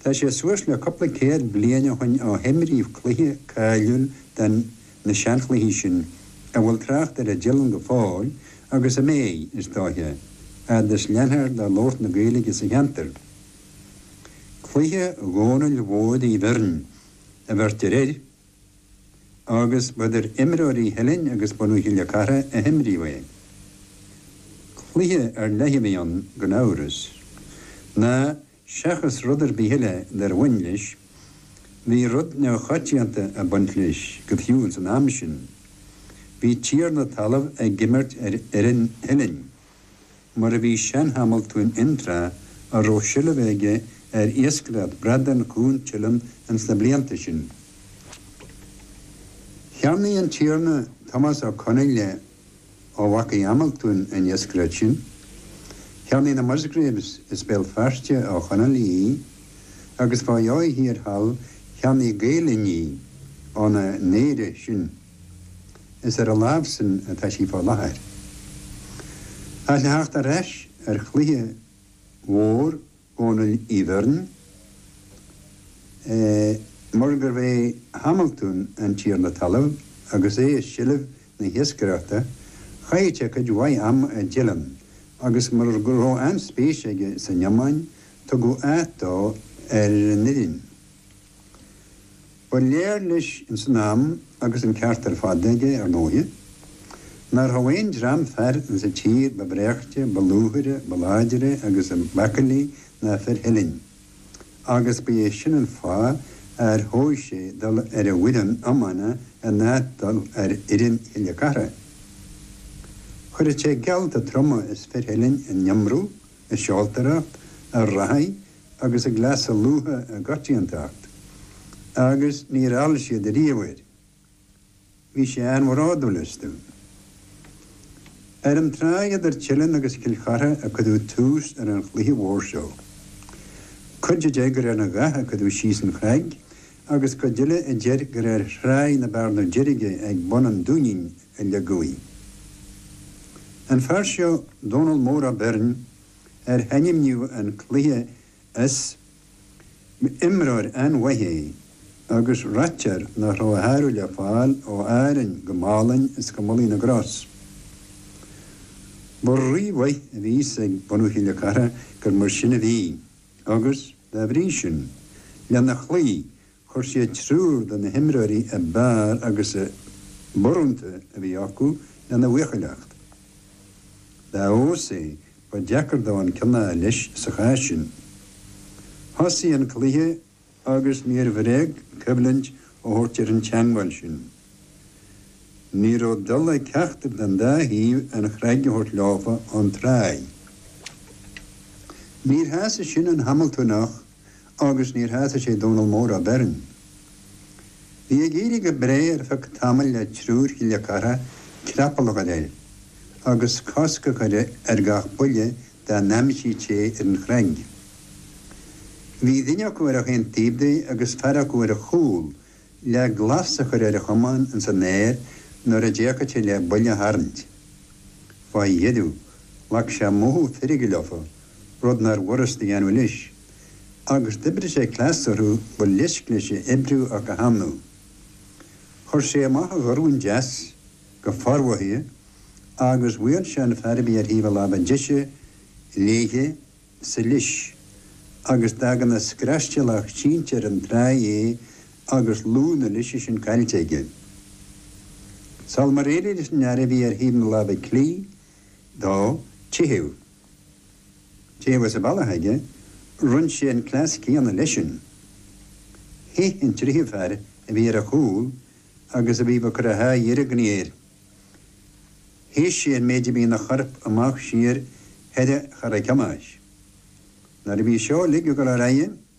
Tá sé suas le cúpla céad bliain ó shin ó himríodh cluiche cáiliúil de na seanchluichí sin a bhfuil trácht air i dTeileann go fóill agus a mbeidh, is dóiche, fhad is leanfar de labhairt na Gaeilge sa cheantar. Cluiche Dhónaill Mhóir Uí Bheirn a bheirtear air agus ba idir imreoirí Theilinn agus bunadh Chille Cartha a himríodh é. Cluiche ar leith a bhí ann gan amhras, ná Seachas rud ar bith eile dár bhain leis, bhí rud neamhchoitianta ag baint leis go fiú ins an am sin. Bhí tiarna talaimh ag imirt ar fhoireann Theilinn, mar a bhí sean-Hamaltún Fhionntrá a raibh seilbh aige ar iascaireacht bradán Chuan Teilinn ins na blianta sin. Cheannaigh an tiarna, Tomás Ó Conghaile, ó mhaca Hamaltúin an iascaireacht sin, cheannaigh na Musgraves as Béal Feirste ó Chonghaile í agus fá dheoidh thiar thall cheannaigh Gael Linn í óna n-oidhrí sin. Is ar a lámhsan atá sí fá láthair. Ach le theacht ar ais ar chluiche mhór Dhónaill Uí Bheirn, mar gurbh é Hamaltún an tiarna talaimh agus é i seilbh na hiascaireachta, chaith sé cuid mhaith ama i dTeileann, agus mar go raibh an-spéis aige san iomáin, tugadh áit dó ar an fhoireann. Ba léir leis ins an am, agus an ceart ar fad aige, ar ndóighe, nach rabh aon dream fear insa tír ba bhreáchta, ba lúfaire, ba láidre agus ab aicillí ná fir Theilinn, agus ba é sin an fáth ar thogh sé dul ar a bhfoireann iomána in áit dul ar fhoireann Chille Cartha. Chuir sé geallta troma as fir Theilinn in iomramh, i seoltóireacht, i reathaidh, agus i gcleasa lútha i gcoitiantacht, agus níor fheall siad ariamh air. Bhí sé an-bhródúil astu. Ar an tsraith idir Teileann agus Cill Chartha a cuireadh tús ar an chluiche mhór seo. Cuid a deir gur ar an ghath a cuireadh síos an chnag agus cuid eile a deir gur ar thráigh na Bearna Deirge ag bun an Dúinín a leagadh í. An fear seo, Dónall Mór Ó Beirn, ar hainmníodh an cluiche as, imreoir an-mhaith é agus ráitear nach raibh a shárú le fáil ó Árainn go Málainn is go Mullaigh na gCros. Ba rí-mhaith a bhí fhios ag bunadh Chille Cartha gur mar sin a bhí agus, dá bhrí sin, lena chloí Chuir siad triúr de na himreoirí ab fhearr agus ab urrúnta a bhí acu lena bhuachailleacht. Dá fheabhas é, ba deacair dó an ceann a fháil leis sa chás sin. Thosaigh an cluiche agus níor bhréag coimhlint a thabhairt ar an teagmháil sin. Ní raibh dul ag ceachtar den dá thaobh an chnag a thabhairt leofa ón tráigh. Níor shásaigh sin an Hamiltóineach. agus níor shásaigh sé Dónall Mór Ó Beirn. Bhí ag éirí go breá ar feadh tamaill le triúr Chille Chartha creapall a chur air, agus cosc a chur ar gach buille dá n-aimsíodh sé ar an chnag. Bhí duine acu ar gach aon taobh de agus fear acu ar a chúl, le glas a chur ar a chamán ins an aer nuair a d'fhéachfadh sé le buille a tharraingt. Fá dheireadh, ghlac sé mothú feirge leofa, rud nár bhfurast a dhéanamh leis, agus d'oibrigh sé cleas orthu ba leisc leis a oibriú ach go hannamh. Chuir sé amach a dhorn deas go formhothaithe agus bhuail sé an fear a bhí ar thaobh a láimhe deise léithe sa leis agus d'fhág ina scraistilleach sínte ar an tráigh é agus lúth na leise sin caillte aige. Sul mar éirigh leis an fhear a bhí ar thaobh na láimhe clí dó teitheadh, Taobh amuigh as an bhealach aige, rinn sé an cleas céanna leisean. Theith an tríomhadh fear a bhí ar a chúl agus a bhí ba cur a haghaidh ar an gcnéir. Theith sé an méid a bhí ina chorp amach siar thoir a chara ceannais. Nuair a bhí seo ligthe go lár aghaidhe,